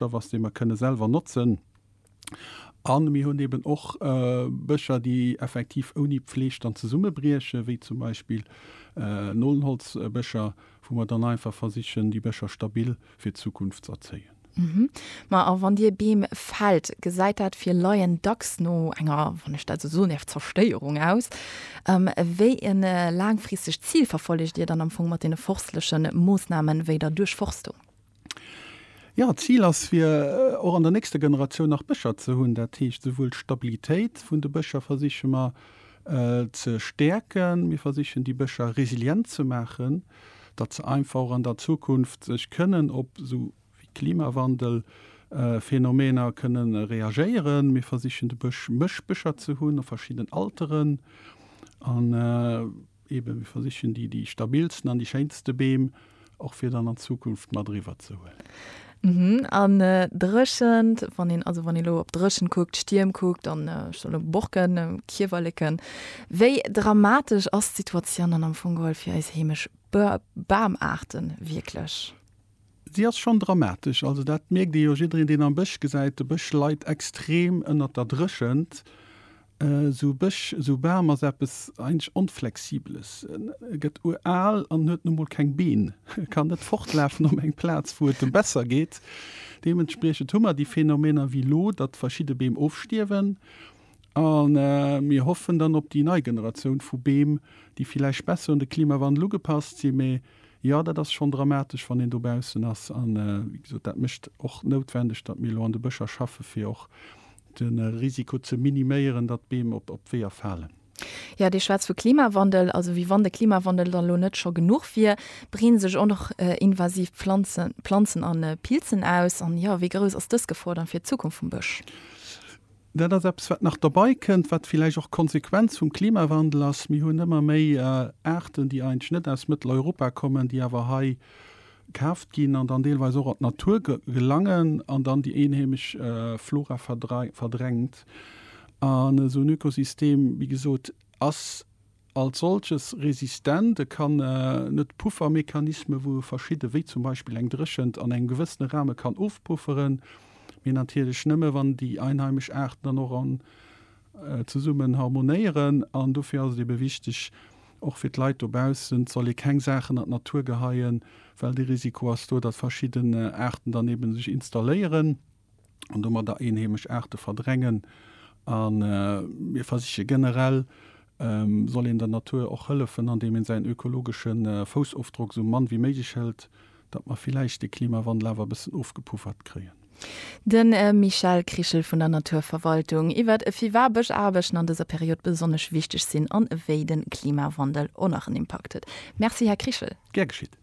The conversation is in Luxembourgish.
Stoff ass, dee mer kënne selwer notzen. A mir hunn eben och Bëscher, déi effektiv ouni Pfleg dann zesummebriechen, wéi zum Beispill Nolenholzbëscher, wou mer dann einfach versichen, déi Bëscher stabil fir d'Zukunft z'erzéien. Mä a wann Dir Beem fällt, gesäit dat fir Laien dacks no enger, wann ech dat esou soen däerf, Zerstéierung aus. Wéi e laangfristegt Zil verfollegt Dir dann am Fong mat deene forstleche Moossnamen wéi der Duerchforstung? Jo, d'Zil ass, fir och an der nächster Generatioun nach Bëscher ze hunn. Dat heescht, souwuel d'Stabilitéit vun de Bëscher versiche mer ze stäerken, mir versichen déi Bëscher resilient ze maachen, datt se einfach och an der Zukunft sech kënnen op esou wéi Klimawandelphänomener kënne reagéieren. Mir versichen de Bësch, Mëschbëscher ze hunn a verschidden Alteren. Eben, mir versichen déi, déi stabilsten an déi schéinste Beem och fir dann an Zukunft mat eriwwer ze huelen. Mhm, an Dréchent, wann een, also wann ee lo op Dréchent kuckt, Stierm kuckt an ech soll lo Borken, Kiewerleken, wéi dramatesch ass d'Situatioun dann am Fong geholl fir eis heemesch Bamaarten wierklech? Si ass schonn dramatesch, also dat mierkt ee jo. Jiddereen, deen am Bësch gesäit, de Bësch leit extrem ënnert der Dréchent. Esou Bësch, esou Bam ass eppes eigentlech Onflexibeles. E gëtt ural an huet nu mol keng Been, e kann net fortlafen op eng Plaz, wou et em besser geet. Deementspriechend hu mer déi Phänomener wéi elo, datt verschidde Beem ofstierwen a mir hoffen dann op déi nei Generatioun vu Beem, déi villäicht besser un de Klimawandel ugepasst sinn, mee Jo, dat ass schonn dramatesch, wann een dobaussen ass. A wéi gesot, dat mécht och noutwendeg, datt mir elo an de Bëscher schaffen, fir och de Risiko ze miniméieren, datt Beem op d'Weeër falen. Jo, Dir schwätzt vu Klimawandel, also wéi wann de Klimawandel dann elo net scho genuch wier, breeden sech och nach invasiv Planzen an Pilzen aus. An, jo, wéi grouss ass dës Gefor dann fir d'Zukunft vum Bësch? Dat ass eppes, wat nach dobei kënnt, wat villäicht och d'Konsequenz vum Klimawandel ass. Mir hunn ëmmer méi Aarten, déi eigentlech net aus Mëtteleuropa kommen, déi awer hei kaaft ginn an dann deelweis och an d'Natur gelangen an dann déi eenheemesch Flora verdrängt. An esou en Ökosystem, wéi gesot, ass, Als solches resistent, e kann net Puffermechanismen, wou e verschidde wéi zum Beispill eng Dréchent an engem gewëssene Rahme kann ofpufferen, mee natierlech nëmme wann déi einheimesch Aarten dann och an zesummen harmonéieren. An dofir ass et ebe wichteg, och fir d'Leit dobaussen, soll ee keng Saachen an d'Natur geheien, well de Risiko ass do, datt verschidden Aarten dann ebe sech installéieren. an domadder eenheemesch Aarte verdrängen. A mir versiche generell, soll een der Natur och hëllefen, andeem een säin ökologesche Foussofdrock esou mann wéi méiglech hëlt, datt mer villäicht de Klimawandel awer e bëssen ofgepuffert kréien. De Michel Krichel vun der Naturverwaltung iwwert e viwa bësch Aarbechten an dëser Period besonnesch wichteg sinn an wéi de Klimawandel oneren Impakt huet. Merci Här Krichel. Gär geschitt.